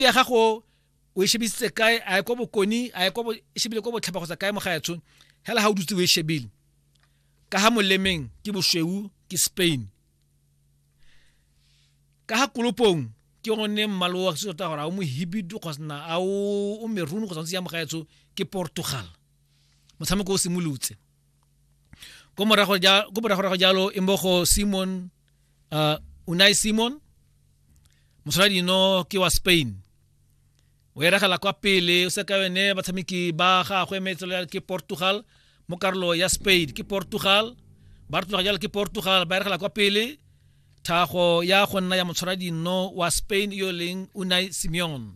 melato ya gago o e shebisitse kae a ye ko bokoni a ye ko e shebile ko botlhaba kgotsa kae mo ga etsho hela ga o dutse o e shebile ka ga molemeng ke bosweu ke spain ka ga kolopong ke gone mmalo wa se tota gore a o mohibidu kgosna a o meruni kgotsa ntse ya mogaetsho ke portugal motshameko o simolotse ko morago jalo e mmogo simon uh, unai simon motlholadi eno ke wa spain o eragela kwa pele o se ka yone batshameki ba gagwe metselo ke portugal mo karolo ya spain ke portugal ba re tloga jalo ke portugal ba eregela kwa pele thago ya go nna ya motshwara dinno wa spain yo leng unai simeon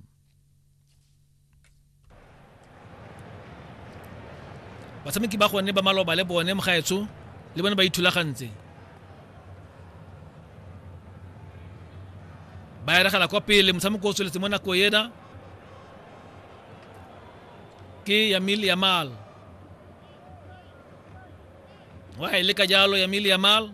batshameki ba gone ba maloba le bone mogaetsho le bone ba ithulagantse ba eregela kwa pele motshameko o tsweletse mo nako ena ke yamil yamal wa e leka jalo yamil yamal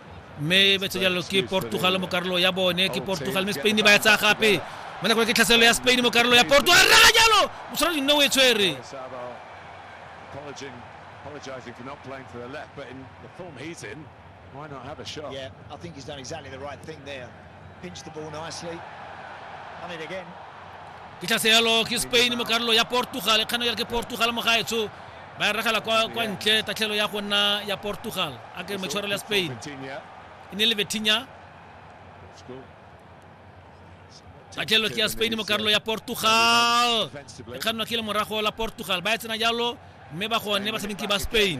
mme ba jalo ke portugal mo karolo ya bone ke portugal mme spain ba ya tsaya gape mo nakong ke tlhaselo ya spain mo karolo ya portugal raga jalo o tshwana dinne o e tshwere apologizing for not playing for the left, but in the form he's in, why not have a shot? Yeah, I think he's done exactly the right thing there. ke tla seyalo ke spain mo karolo ya portugal e kgano ya ke portugal mo gaetsho ba regela kwa kwa ntle tatlhelo ya go nna ya portugal a ke metshwarelo ya spain e ne le betinya tatlhelo ke ya spain mo karolo ya portugal e kgannwa ke le morago la portugal ba e tsena jalo mme ba gone batshameki ba spain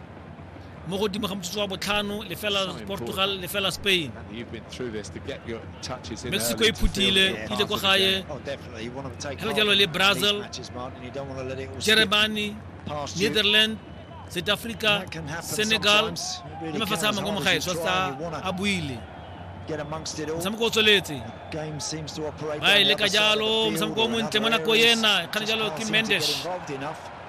mo godimo ga motsotso wa botlhano lefela portugal lefela spain mexico e phutile ile ko gae oh, hela jalo le brazil germany netherland south africa senegal le mafatshe a mangwe mo gae tshwatsa a buile motshameko o tsweletse ba e leka jalo motshameko o montle mo nako ena kgane jalo ke mendesh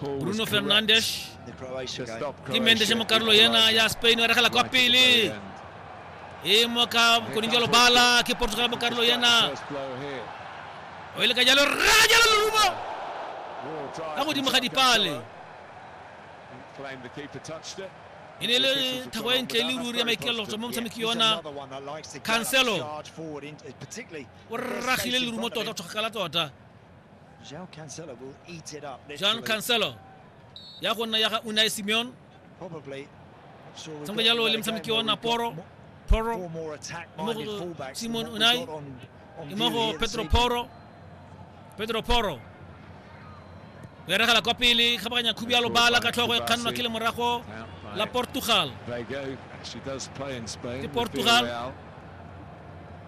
Bruno Fernandes. Kimendes mo Carlo Yena ya Spain era khala kwa pele. E mo ka kuninjalo bala ke Portugal mo Carlo Yena. O ile ka jalo ra jalo lumo. Ka godimo ga dipale. E ne le thabo e ntle le ruri ya maikelelo tswa mo motshameki yona Cancelo. O rragile lerumo tota o tshogakala tota. João Cancelo will eat it up. João Cancelo ya go nna ya ga Unai Simeon probably sangwe jalo le motshameki wa Naporo Poro mmogo Simon Unai mmogo Pedro Poro Pedro Poro o eregela kwa pele kgabaganya khubi ya lobala ka tlhogo e kgannwa ke lemorago la Portugal ke Portugal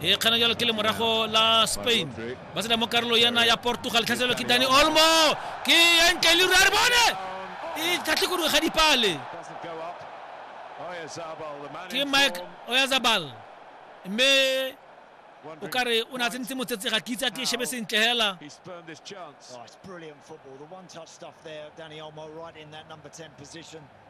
e kgana jalo ke le morago la spain ba sena mo karolo yana ya portugal tlhaselelo ke dani olmo ke entle le rare bone e tlhatlhe koduwe ga dipale ke mike oyazabal mme o ka re o ne a tsentse motsetse ga ke itse a ke shebe sentle hela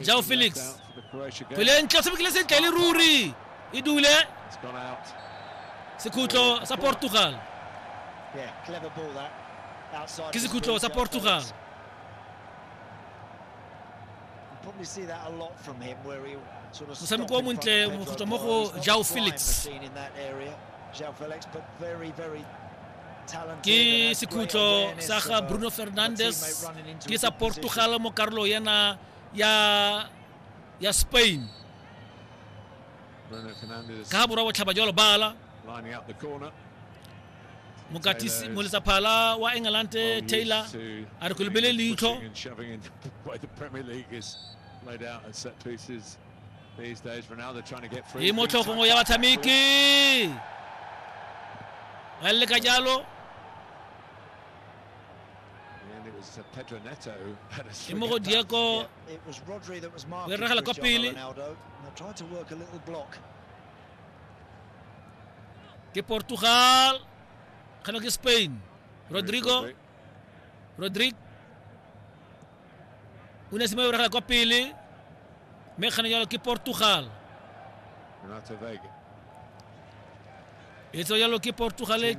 jao felix kgwele ntle o tshamekile sentle le ruri e dule sekhutlo sa portugal ke sekhutlo sa portugal motshameko o montle mogotlwa mo go jao felix ke sekhutlo sa ga bruno fernandes ke sa portugal mo karolo yana ya ya spain ka borwa botlhaba jalo bala mokatisi moletsaphala wa england taylor a re ko lebele leitlho Di mo tlhogong ya batshameki. Ba leka jalo. E mo go Diego. O e regela kwa pele. Ke Portugal. Kgano ke Spain. Rodrigo. Rodrigo. o ne se mo ragela kwa pele mme kgane jalo ke portugal e tsewa jalo ke portugal